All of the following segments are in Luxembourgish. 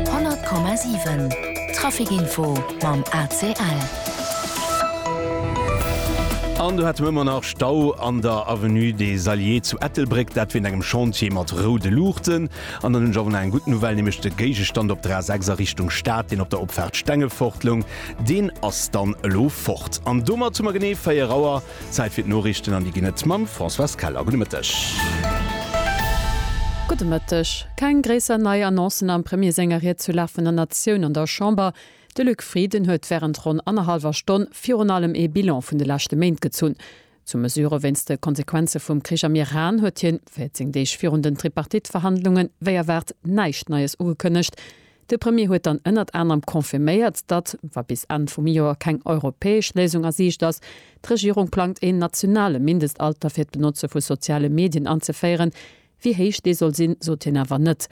100,7 Trafic Info mam ACL. An do hätte mer ëmmer nach Stau an der Avenue des Alliés zu Ettelbréck, dat wéint engem Chantier mat roude Luuchten. An dann hunn ech awer nach eng gutt Nouvelle, nämlech de Géigestand op der A6 a Richtung Stad, deen op der Opfaart Stengefort loung, deen ass dann elo fort. An domat hu mer genee 4 Auer. Zäit fir d'Noriichten an déi ginn et mam Françoise Keller. Gudde Mëtteg. Gudde Mëtteg. Keng gréisser nei Annoncen am Premier senger Ried zur Lag vun der Natioun an der Chamber. De Luc Frieden huet wärend ronn annerhallwer Stonn virun allem ee Bilan vun de leschte Méint gezunn. Zu Mesurë wéinst de Konsequenze vum Krich am Iran huet hien, 14 Deeg virun den Tripartite-Verhandlungen, wéi erwaart näischt Neies ugekënnegt. De Premier huet dann ënnert anerem confirméiert, datt, wa bis Enn vum Joer keng europäesch Léisung a Siicht ass, d'Regierung plangt een nationale Mindestalter fir d'Benotze vu soziale Medien anzeféieren. Wéi héich dee soll sinn, sot hien awer net.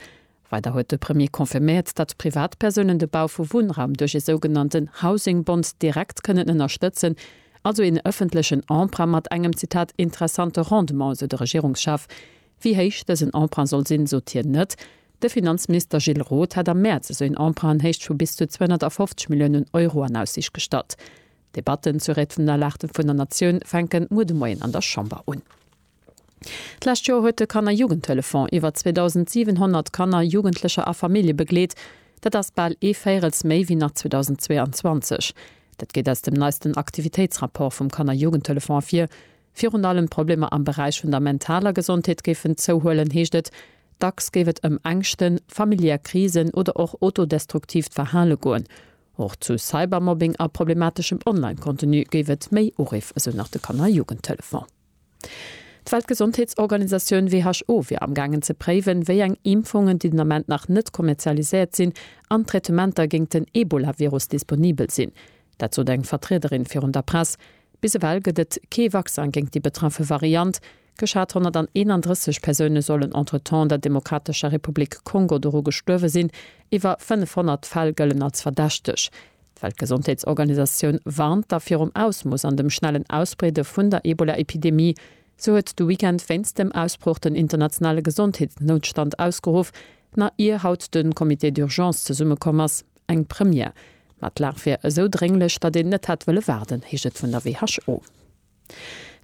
Weider huet de Premier confirméiert, datt Privatpersounen de Bau vu Wunnraum duerch ee sougenannten Housing Bond direkt kënnen ënnerstëtzen, also een ëffentlechen Emprunt mat engem, Zitat, interessante Rendement, esou de Regierungschef. Wéi héich dësen Emprunt soll sinn, sot hien net. De Finanzminister Gilles Roth hat am Mäerz esou een Emprunt an Héicht vu bis zu 250 Milliounen Euro an Aussiicht gestallt. D'Debatten zur Rate vun der Lag vun der Natioun fänken muer de Moien an der Chamber un. D'lescht Joer huet de Kanner Jugendhëlleffonds iwwer 2.700 Kanner, Jugendlecher a Famillje begleet. Dat ass bal ee Véirels méi wéi nach 2022. Dat geet aus dem neisten Aktivitéitsrapport vum Kanner Jugendhëlleffonds ervir. Virun allem d'Problemer am Beräich vun der mentaler Gesondheet géifen zouhuelen, heescht et. Dacks géif et ëm Ängschten, familiär Krisen oder och autodestruktiivt Verhale goen. Och zu Cybermobbing a problemateschem Online-Contenu géif et méi Uriff, esou nach de Kanner Jugendtelefon. D'Weltgesondheetsorganisatioun, WHO, wier am gaangen ze préiwen, wéi eng Impfungen, déi den Ament nach net kommerzialiséiert sinn, an Traitementer géingt den Ebola-Virus disponibel sinn. Dat sot eng Vertriederin virun der Press. Bis ewell gëtt et kee Vaccin géingt déi betraffe Variant. Geschat 131 Persoune sollen entretemps an der Demokratescher Republik Kongo doru gestuerwe sinn. Iwwer 500 Fäll gëllen als verdächteg. D'Weltgesondheetsorganisatioun warnt da virum Ausmooss an dem schnellen Ausbreede vun der Ebola-Epidemie. Se huet de Weekend wéinst dem Ausbroch den internationale Gesondheetsnoutstand ausgeruff, nach ier haut de Comité d'urgence zesummekomm ass. Eng Première. Ma d'Lag wier esou drénglech, datt een net hätt wëlle waarden, heescht et vun der WHO.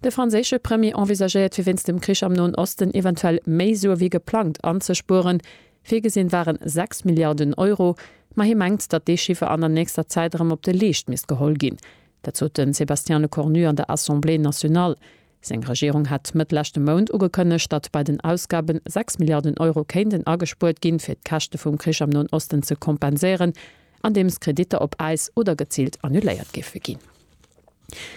De franséische Premier envisagéiert fir wéinst dem Krich am Noen Osten eventuell méi Sue wéi geplangt anzespueren. Virgesinn waren 6 Milliarden Euro, ma hie mengt, datt dee Chiffer an der nächster Zäit erëm op de Leescht misst geholl ginn. Dat sot de Sébastien Lecornu an der Assemblée nationale. Seng Regierung hat Mëtt leschte Mount ugekënnegt, datt bei den Ausgaben 6 Milliarden Euro kéinten agespuert ginn, fir d'Käschte vum Krich am Noen Osten ze kompenséieren, andeems Kreditter op Äis oder geziilt annuléiert géife ginn.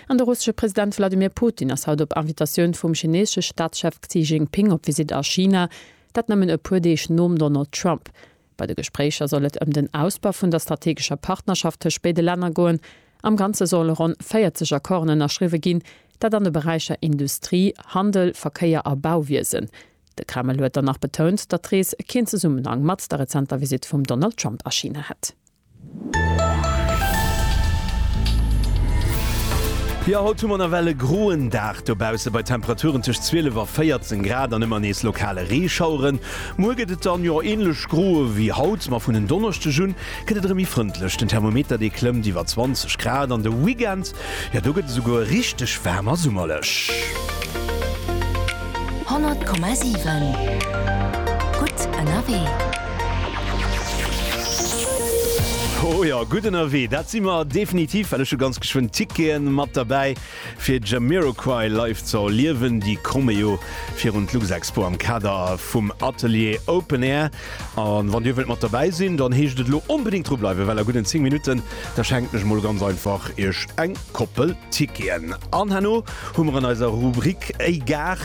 An de russesche President Wladimir Putin ass haut op Invitatioun vum chineesesche Staatschef Xi Jinping op Visitt a China, dat nëmmen e puer Deeg nom Donald Trump, Bei de Gespréicher soll et ëm den Ausbau vun der strategescher Partnerschaft tëscht béide Länner goen. Am Ganze solle ronn 40 Accorden ënnerschriwwe ginn, dat an de Beräicher Industrie, Handel, Verkéier a Bauwiesen. De Kreml huet dann nach betount, datt d'Rees keen Zesummenhang mat der rezenter Visitt vum Donald Trump a China hätt. Jo, haut hu mer nawell e groen Dag dobausse bei Temperaturen tëscht 12 a 14 Grad an ëmmer nees lokale Reeschaueren. Muer gëtt et dann jo änlech gro ewéi haut, ma vun en Donneschdeg un gëtt et erëm méi frëndlech. Den Thermometer dee klëmmt iwwer 20 Grad an de Weekend Jo, do gëtt et esouguer richteg waarm a summerlech. 100,7 gutt ënnerwee. Ho jo, gutt ënnerwee, dat si mer definitiv, well ech hu ganz geschwënn Tickete mat derbäi fir Jamiroquai live ze erliewen. Déi komme jo virun d'Luxexpo am Kader vum Atelier Open Air. An wann dir wëllt mat derbäi sinn, dann heescht et elo onbedéngt dru bleiwen, well a gudden 10 Minutten, da schenken ech mol ganz einfach iech eng Koppel Ticketen. An herno hu mer an eiser Rubrik Ey Gar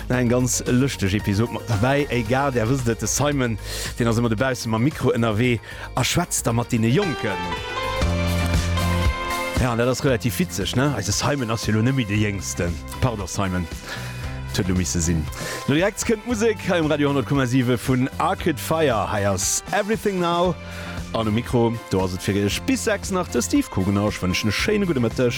nach eng ganz lëschteg Episod mat derbäi. Ey Gar, där wësst et, de Simon, deen ass ëmmer dobausse mam Mikro ënnerwee a schwätzt da mat deene Jonken. Jo, an dat ass relativ witzeg, ne? Eise Simon ass jo elo net méi de Jéngsten. Pardon Simon, et huet lo misse sinn. Lo direkt kënnt d'Musek hei um Radio 10,7 vun Arcade Fire. Hei ass Everything Now an um Mikro do ass et fir Iech bis 6 nach de Steve Kugener. Ech wënschen e schéine gudde Mëtteg.